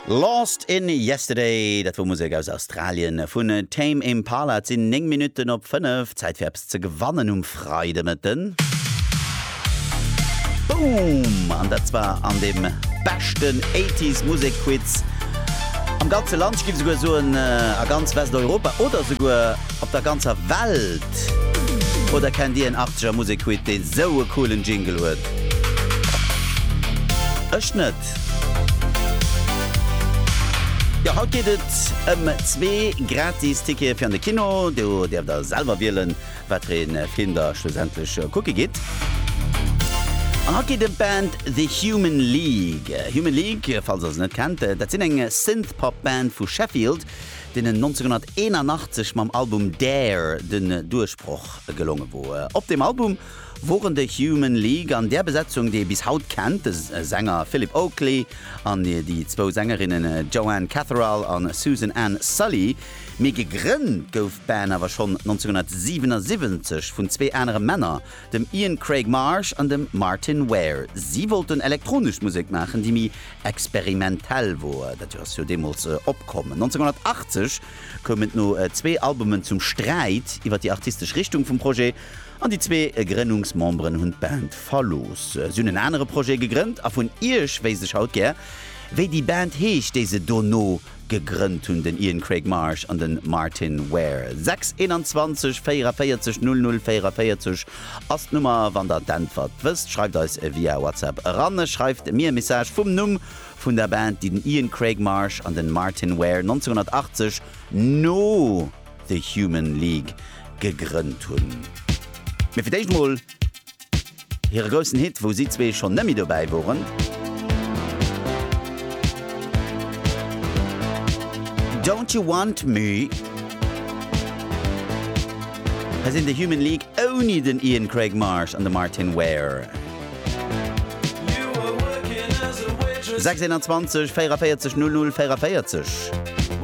Lost in Yesterday, dat wor Musek aus Australien vun Tame Impala. Et sinn 9 Minutten op 5. Zäit fir eppes ze gewannen um Freidemëtten. Boom! An dat zwar an dem beschten 80s Musek Quiz am ganze Land, ech giff esouguer soen a ganz Westeuropa oder esouguer Op der ganzer Welt? Oder kennt dir en Arzeger Musekwit dee sou e coolen Jingle huet? Ech net. Jo, haut geet et ëm zwee gratis Tickete fir an de Kino. Do däerft der selwer wielen, wat fir ee Film der schlussendlech kucke gitt. An haut geet et ëm d'Band The Human League. Human League, falls der se net kennt, dat sinn eng Synth-Pop-Band vu Sheffield. deenen 1981 mam Album Dare den Duerchbroch gelonge wor. Op deem Album woren de Human League an där Besetzung, déi ee bis haut kennt, de Sänger Phillip Oakley an déi zwou Sängerinnen Joanne Catherall an Susan Ann Sully, mee gegrënnt gouf d'Band awer schonn 1977 vun zwee anere Männer, dem Ian Craig Marsh an dem Martyn Ware. Si wollten elektronesch Musek maachen, déi méi experimentell wor. Dat ass jo deemools opkomm. 1980 koum et no zwee Albumen zum Sträit iwwer déi artistesch Richtung vum Projet an déi zwee Grënnungsmemberen hunn d'Band verlooss. Si hunn en anere Projet gegrënnt a vun Iech wéisst ech haut gär, wéi déi Band heescht, déi se dono Gegrënnt hunn den Ian Craig Marsh an den Martin Ware 6 21 44 00 44 ass d'Nummer. Wann der d'Äntwert wësst, schreift eis e via WhatsApp eran. Schreift mir e Message vum Numm vun der Band, déi den Ian Craig Marsh an den Martin Ware 1980, no The Human League, gegrënnt hunn. Mee fir d'éischt mol Hire groussen Hit, wou si zwee schonn net méi dobäi woren, Don't You Want Me, hei sinn The Human League ouni den Ian Craig Marsh an de Martyn Ware. 26 ënner 20, 44 00 44.